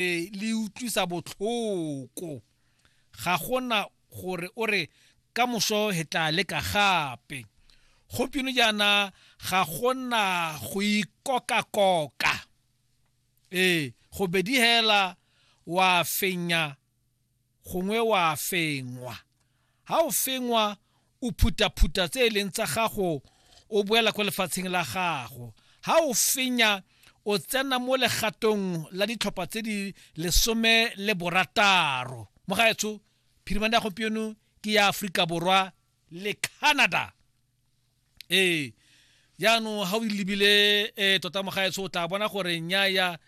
ee le utlwisa botlhoko ga gona gore o re ka moso he tla leka gape gopino jaana ga gona go ikoka-koka ee go bedi hela wa fenya gongwe wa fengwa ha o fengwa o phutaphuta tse e leng tsa gago o boela kwa lefatsheng la gago ha o fenya o tsena mo legatong la ditlhopha tse di lesome le borataro mo gaetsho phirimane ya gompieno ke ya aforika borwa le canada ee jaanong ga o lebile um tota mogaetsho o tla bona gore nyaya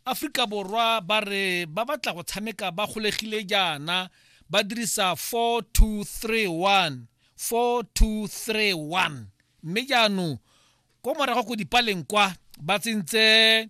aforika borwa ba re ba batla go tshameka ba golegile jaana ba dirisa 4231 4231 mme jaanong ko morago ko dipaleng kwa ba tsentse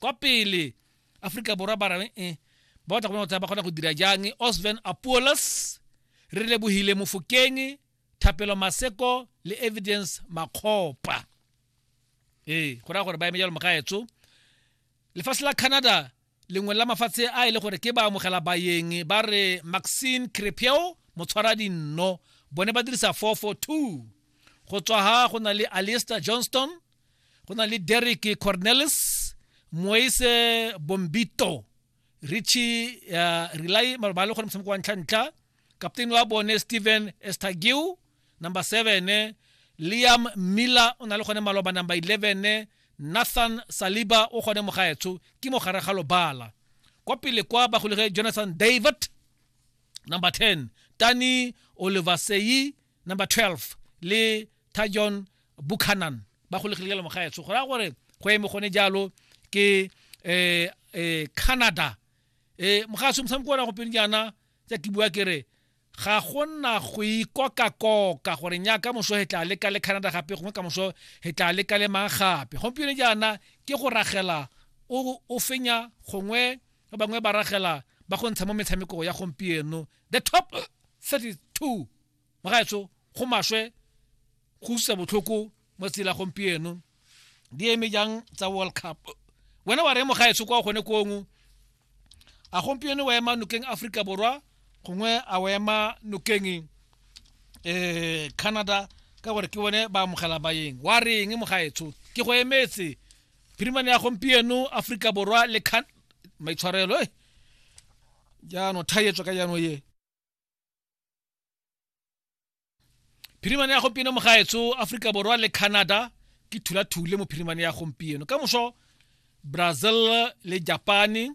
kwa pele aforika borwa ba reng eh, ba batla go bona gore ba kgona go dira jang osven apolos re lebogile mofokeng thapelo maseko le evidence makgopa ee go raya gore ba eme jalo mogaetso lefatshe la canada lengwe la mafatshe a e le gore ke ba amogela bayeng ba re maxine crepeo motshwara dinno bone ba dirisa 442 go tswa ha go na le aliester johnston go na le derek cornelis moise bombito richie uh, relay ba le gore motshameko wa ntlha-ntlha captain wa bone stephen estagiu number seven liam miller o na le gone maloba number eleven nathan saliba o gone mogaetsho ke mogare ga lobala kwa pele kwa bagolege jonathan david number ten tani oliver seyi number 12 le tajon buchanan ba golegile ka lemogaetsho go raya gore go eme gone jalo ke um um canada um mogaso motshameko ona gopeng jaana tsa ke bua kere ga go nna go ikoka-koka gore nya ka moso he tla leka le canada gape gongwe ka moso he tla leka le mang gape gompieno jaana ke go ragela o fenya gongwe ba bangwe ba ragela ba go ntsha mo metshamekong ya gompieno the top 32 bagaetso go maswe go usa botlhoko mo tsela gompieno di eme jang tsa world cup wena wa re mogaetso kwa gone kongwe a gompieno wa ema nokeng aforika borwa gongwe a wa ema nokeng um canada ka gore ke bone ba amogela bayeng wa reng mogaetsho ke go emetse phirimane ya gompieno aforika borwa le maitshwarelo e eh. jaanong thaetswa ka jaanong ye phirimane ya gompieno mogaetso aforika borwa le canada ke thulathule mo phirimane ya gompieno ka moso brazil le japane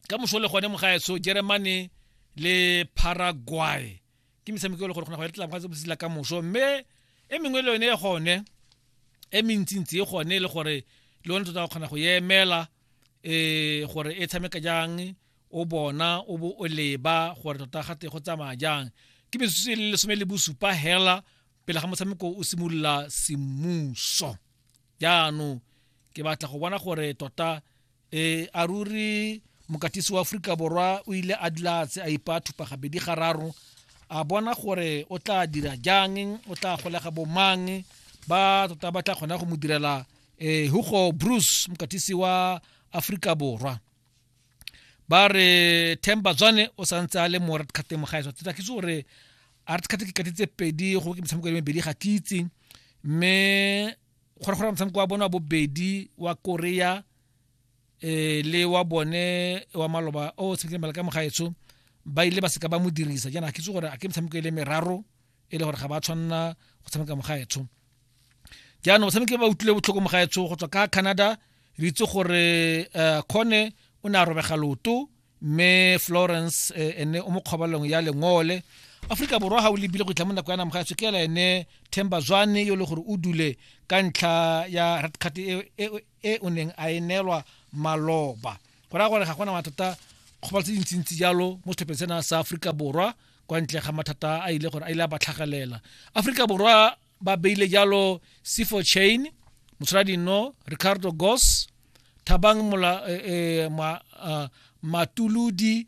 ka moso le gone mogaetso germany le paraguay ke metshameko e le gore kgona go ya letlang ka botsela ka moso mme e mengwe le yone e gone e mentsintsi e gone e le gore le yone tota o kgona go emela um gore e tshameka jang o bona o bo o leba gore tota ga te go tsamaya jang ke metsotso e le lesome le bosupa hela pele ga motshameko o simolola semmuso jaanong ke batla go bona gore tota e a ruri mokatisi wa aforika borwa o ile a dlatse a ipa thupa gabedi gararo a bona gore o tla dira jang o tla golega bomang ba tota ba tla kgona go mo direla um hugo bruce mokatisi wa aforika borwa ba re temba tswane o santse a le mo red cardeng mo gaetswa tsa ke itse gore a red card ke kati tse pedi go ke metshameko e le mebedi ga ke itse mme gore gore motshameko wa bone wa bobedi wa korea eh le wa bone wa maloba o tshamekile malaka mo gaetsho ba ile ba seka ba mo dirisa jaana ke itse gore a ke metshameko e le meraro e le gore ga ba tshwanela go tshameka mogaetsho jaanong batshameki ba utlwile botlhoko mogaetsho go tswa ka canada re itse gore eh, kgone o ne a robega loto mme florence eh, ene o mo kgobalong ya lengole aforika borwa ga o lebile go itlha mo nako ya na mogaetsho ke ela ene themba zwane yo e le gore o dule ka ntlha ya red card e, e, e o neng a e neelwa maloba go raya gore ga gona mathata kgobalo tse dintsintsi jalo mo setlhopheng sena sa aforika borwa kwa ntle ga mathata a ile gore a ile a ba tlhagelela aforika borwa ba beile jalo sifo chain motshwaradino ricardo gos thabang mola, eh, eh, ma, uh, matuludi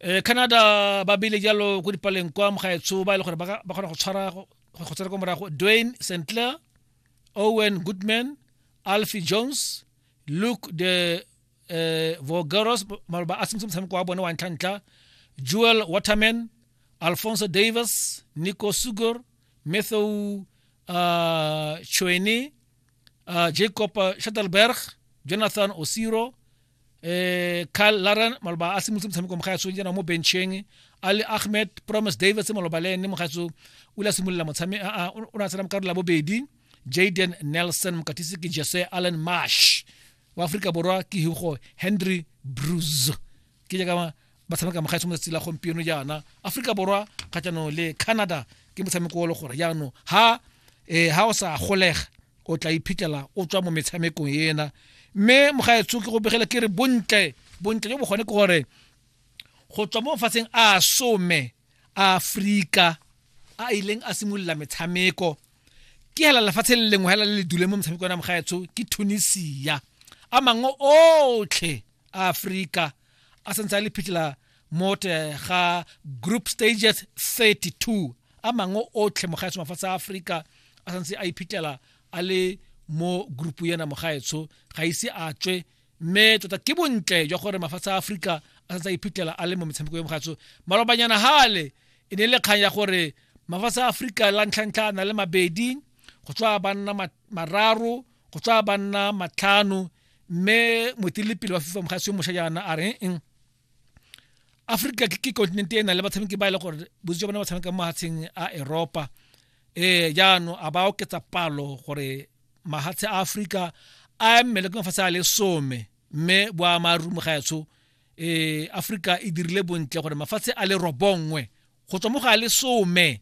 eh canada ba bile jalo ko dipaleng kwa mogaetsho ba e le gore ba kgona go tshwara go tsena kwa morago dwayne st clair owen goodman alfie jones luke de eh, vogeros maloba a sentse motshameko wa bone wa ntlhantlha joel waterman alfonso davis nico sugor matthew uh, choeni uh, jacob shuttleberg jonathan osiro eh Carl Laren maloba a simolotse motshameko mo gaetsong jana mo bencheng Ali Ahmed Promise Davis maloba le ene mo gaetso o ile a simolola motshameko o ne a tsena mo karolo ya bobedi Jaden Nelson mokatisi ke Jesse Allen Marsh wa Afrika Borwa ke Hugo Henry Bruce ke jaaka ba tshameka mogaetsho mo tsatsi la gompieno jaana aforika borwa kgatlhanong le canada ke motshameko o le gore jaanong ha eh, ha o sa golega o tla iphitlhela o tswa mo metshamekong ena mme mogaetsho ke go begele ke re bontle bontle jo bogone ke gore go tswa mo mafatsheng a some a aforika a ileng a simolola metshameko ke hela lefatshe le lengwe hela le le dule mo metshameko ya mogaetsho ke tunisia a mangwe otlhe a Afrika a sentse a le phitla mo ga group stages 32 a mangwe otlhe mogaetsho mafatshe a Afrika a sentse a iphitlhela a le mo group yena mogaetsho ga ise a tswe mme tota ke bontle jwa gore mafatshe a Afrika a sentse a iphitlhela a le mo metshameko ya mogaetsho malobanyana hale e ne le kgang ya gore mafatshe a Afrika la ntlhantlha na le mabedi go tswa banna mararo go tswa banna matlhano mme moeteledipele wa fifa mogasio mošwa jaana a reng mm, africa ke continent e nang le batshameki ba e le gore bontsi jwa bone ba tshameka mo mahatsheng a eropa ee jaanong a ba oketsa palo gore mahatshe a africa a mmele ke mafatshe a le some mme boamarumo ga etsho um africa e dirile bontle gore mafatshe a le robongwe go tswa mo ga le some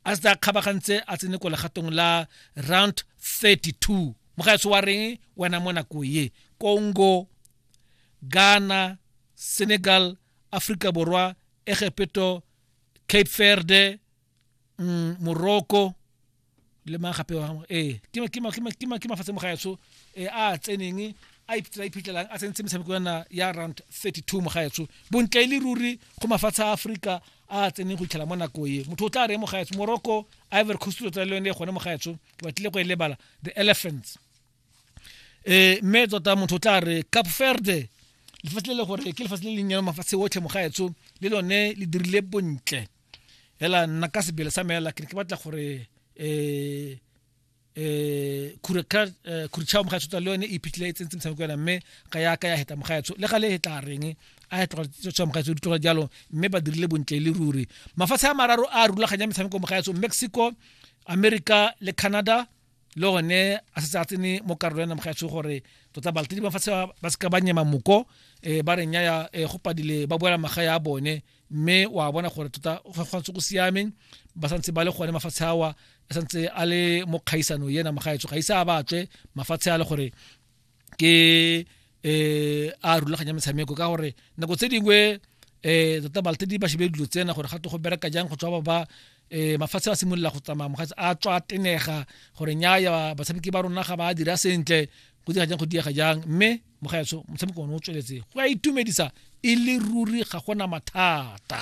a se a kgabagantse a tsene ko legatong la round 32 mo ga wa reng wena mo nako ye congo ghana senegal africa borwa egepeto cape verde mm, morocco le mang gape ee ke mafatshe mo gaetsho um a tseneng a ipitlela iphitlhelang a tsentse metshameko yana ya round 32 mo gaetsho bontle e le ruri go mafatshe a aforika a tseneng go itlhela mo nako e motho o tla re mo gaetsho morocco ivory coast o tla le yone gone mo gaetsho ke batlile go e lebala the elephants um mme tota motho o tla re cap verde lefatshe le le gore ke lefatshe le le nnyane mafatshe otlhe mo gaetsho le lone le dirile bontle hela nna ka sebele sa meela ke ke batla gore eh eh kureka eh, kurchao mogaetsho tsa le yone e phitlhile e tsentse motshameko yona mme ga ya ka ya heta mogaetsho le ga le hetla reng a ya tloga tswa mogaetsho di tloga jalo mme ba dirile bontle le ruri mafatshe a mararo a rulaganya metshameko mogaetsho mexico america le canada le gone a setse a tsene mo karolo ya namoga ya tsho gore tota balatedi ba fatshe ba seka ba nyema moko um ba reng yaya um go padile ba boela maga ya bone mme wa bona gore tota go tshwanetse go siameng ba santse ba le gone mafatshe awa a santse a le mo kgaisano ena mogaetso ga ise a batswe mafatshe a le gore ke eh a rulaganya metshameko ka gore nako tse dingwe eh tota balte di ba shebe dilo tsena gore ga to go bereka jang go tswa ba ba eh mafatshe a simolola go tsamaya mogatse a tswa tenega gore nya ya batshameki ba rona ga ba dira sentle go dira jang go diega jang mme mogaetso motshameko o ne o tsweletse go a itumedisa e le ruri ga gona mathata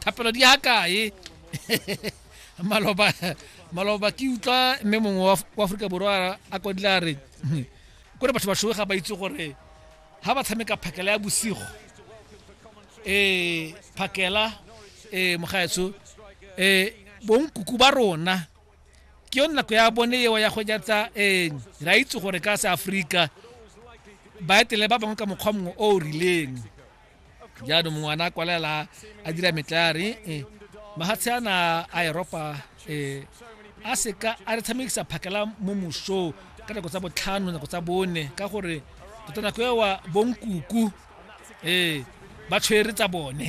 thapelo di ya kae maloba maloba ke utlwa mme mongwe wa Af- wa aforika borwa a kodile a re kore batho bashoe ga ba itse gore ga ba tshameka phakela ya bosigo eh phakela eh mogaetsho eh bonkuku ba rona ke yone nako ya bone eo ya go jatsa eh ra itse gore ka se Afrika ba etele ba bangwe ka mokgwa mongwe o o rileng jaanong mongwe ana a kwalela a dira metlare eh, mahatshe ana a eropa eh, a seka a re tshamekisa phakela mo moso ka nako tsa botlhano nako tsa bone ka gore tota nako ewa bonkuku ee eh, ba tshwere tsa bone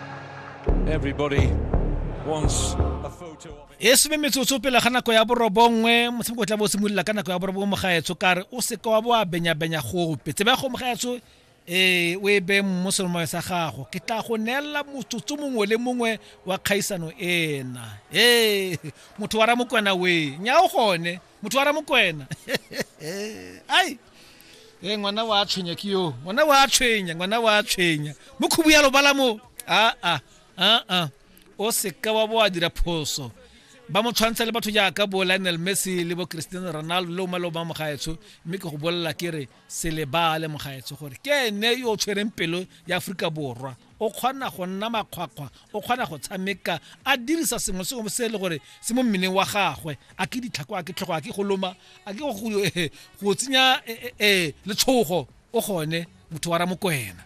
e some metsotso pele ga nako ya borobongwe motshameko o tla bo o simolola ka nako ya borobongwe mogaetsho kare o seka wa bo a benyabenya gope tsebe ya go mogaetsho ee o e beng mo selomayo sa gago ke tla go neela motsotso mongwe le mongwe wa kgaisano ena ee motho wa ramokwena we nya o gone motho wa ramokwena ai e ngwana wa tshwenya ke yo ngwana wa tshwenya ngwana wa tshwenya mo khubu ya lobala mo aa aa o seka wa bo a dira phoso ba mo tshwantsha le batho jaaka bo lionel messi le bo cristiano ronaldo le o maleo ba mo gaetsho mme ke go bolelela ke re se lebale mogaetsho gore ke ene yo o tshwereng pelo ya aforika borwa o kgona go nna makgwakgwa o kgona go tshameka a dirisa sengwe sengwe se e le gore se mo mmeleng wa gagwe a ke ditlhako a ke tlhogo a ke go loma a ke go tsenya eh, eh, eh, letshogo o gone motho wa ramokwena